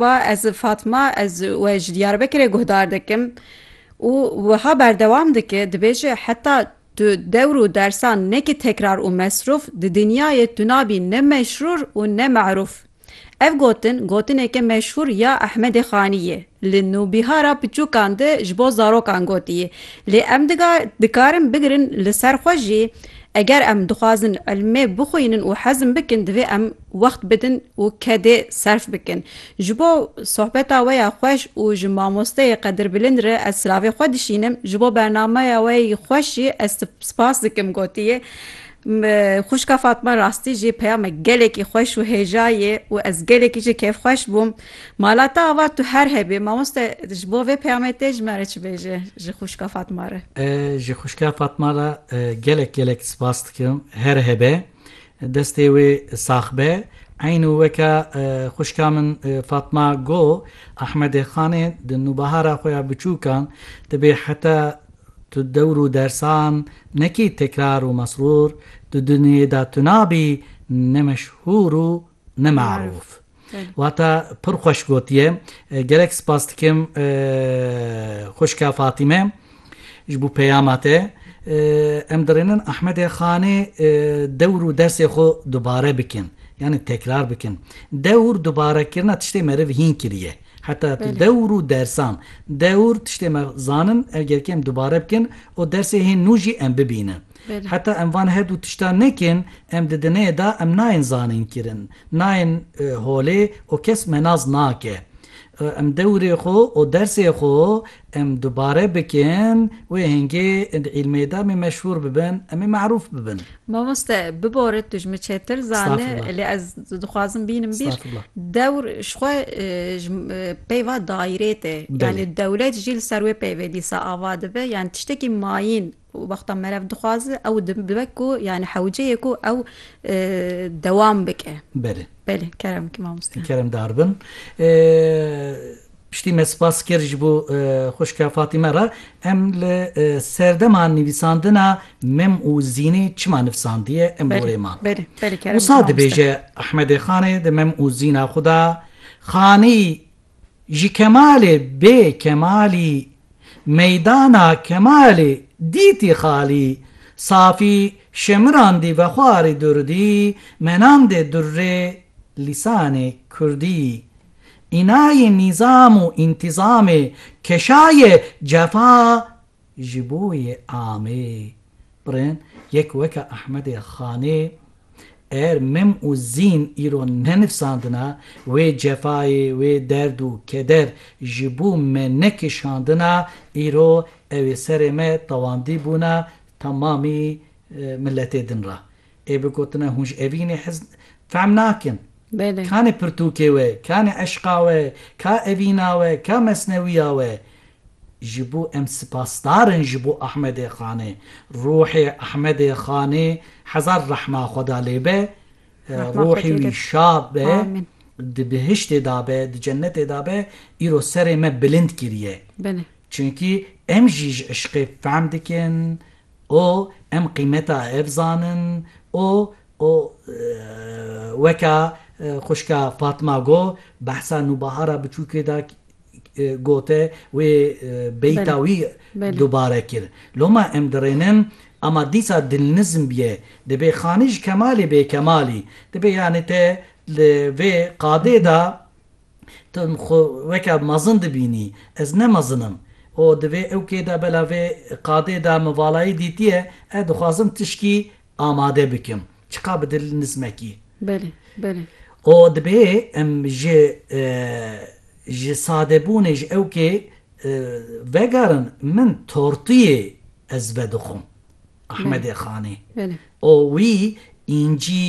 Merhaba ez Fatma ez we ji Diyarbekirê guhdar dikim û wiha berdewam dike dibêje heta tu dewr û dersan nekî tekrar û mesrûf di dinyayê tu nabî ne meşrûr û ne merûf. Ev gotin gotineke meşhûr ya Ehmedê Xanî yê li nûbîhara piçûkan de ji bo zarokan gotiyê lê em dikarin bigirin li ser xwe jî eger em dixwazin ilmê bixwînin û hezm bikin divê em wext bidin û kedê serf bikin. Ji bo sohbeta we ya xweş û ji mamosteyê qedirbilind re ez silavê xwe dişînim. Ji bo bernameya we yî xweş jî ez te spas dikim gotiye. Xwişka Fatma rastî jî peyamek gelekî xweş û hêja yê û ez gelekî jî kêfxweş bûm. Mala te ava tu her hebî. Mamoste ji bo vê peyamê tê ji me re çi bêje ji xwişka Fatma re? Ji xwişka Fatma re gelek gelek spas dikim. Her hebe. Destê wê sax be. Eyn û weke xwişka min Fatma go, Ahmedê Xanê di nûbahara xwe ya biçûkan di bê heta tu dewr û dersan nekî tekrar û mesrûr di dunyê da tuna bî ne meşhûr û Ne maruf. Wata pir xweş gotiye. Gelek spas dikim xwişka Fatîme ji bo peyama te. Em dirênin Ahmedê Xanê dewr û dersê xwe dubare bikin. Yanî tekrar bikin. Dewr dubarekirina tiştê meriv hîn kiriye. Heta dewr û dersan. Dewr tiştê me zanin, eger kêm dubare bikin û dersê hê nû jî em bibînin. Heta em van her du tiştan nekin, em di dineyê de em nayên zanîn kirin, nayên holê û kes menas nake. Em dewrê xwe û dersê xwe em dubare bikin, wê hingê di îlmê de em ê meşhûr bibin, em ê me'rûf bibin. Mamoste, bibore tu ji min çêtir zane, lê ez dixwazim bînim bîr, dewr ji xwe ji peyva dayîrê tê, yanî dewlet jî li ser wê peyvê dîsa ava dibe, yanî tiştekî mayîn Wexta merev dixwaze ew dibe ku yani hewceyê ku ew dewam bike. Belê. Belê, kerem ki mamoste. Kerem dar bin. Piştî me spas kir ji bo xwişka Fatîme re, em li serdema nivîsandina Mem û Zînê çima nivsandiye em li gorê man. Belê, belê kerem ki mamoste. Wisa dibêje Ehmedê Xanê di Mem û Zîna xwe de, Xanî Ji Kemalê bê Kemalî Meydana Kemalê dîtî xalî Safî şemirandî vexwarî durdî Menandê durrê lîsanê kurdî Înayê nîzam û întîzamê Keşayê cefa Ji bo yê Amê birên yek weke Ehmedê Xanê er mim û zîn îro nenifsandina, wê cefayê, wê derd û keder ji bo me nekişandina, îro ew ê serê me tewandî bûna temamî miletê din re. Ê bi gotina hûn ji evînê hez fehm nakin. Ka ne pirtûkê we, ka ne eşqa we, ka evîna we, ka mesnewîya we. Ji bo em sipasdar in ji bo Ahmedê Xanê. Ruhê Ahmedê Xanê hezar rehma Xweda lê be. Ruhê wî şad be, di bihiştê de be, di cennetê de be. Îro serê me bilind kiriye. Çunkî em jî ji eşqê fehm dikin. û em qîmeta ev zanin û û weka xwişka Fatma got, behsa Nûbahara biçûkê da got e, wê beyta wî dubare kir. Loma em dirênin, ama dîsa dilnizm bîye, dibê Xanî ji Kemalê bê Kemalî, dibê yanî te li vê qadê da, Tu xwe weke mezin dibînî, ez ne mezin im û di vê ewkê de bela vê qadê de min valayî dîtiye, ez dixwazim tişkî amade bikim, çiqa bi dil nizmekî. Belê, belê. Û dibê em ji ji sadebûnê ji ewkê vegerin, min tortiyê ez vedixwim. Ahmedê Xanê û wî încî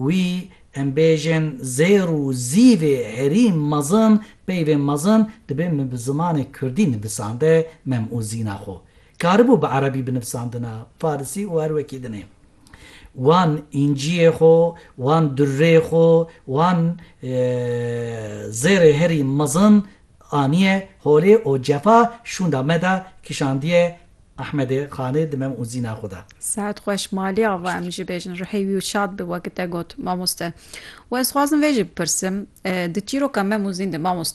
wî em bêjin zêr û zîvê herî mezin peyvên mezin dibê min bi zimanê kurdî nivisande mem û zîna xwe karibû bi erebî binivsandina, farisî û her wekî din ê. Wan încîyê xwe, wan durrê xwe, wan zêrê herî mezin anîye holê û cefa şûnda me de kişandiye Ehmedê, Xanê di mem û zîna xwe de. Sehet xweş malê ava em ji bêjin rihê wî û şad bi weke te got mamoste. We ez xwazim vê jî bipirsim di çîroka mem û zîn de mamoste.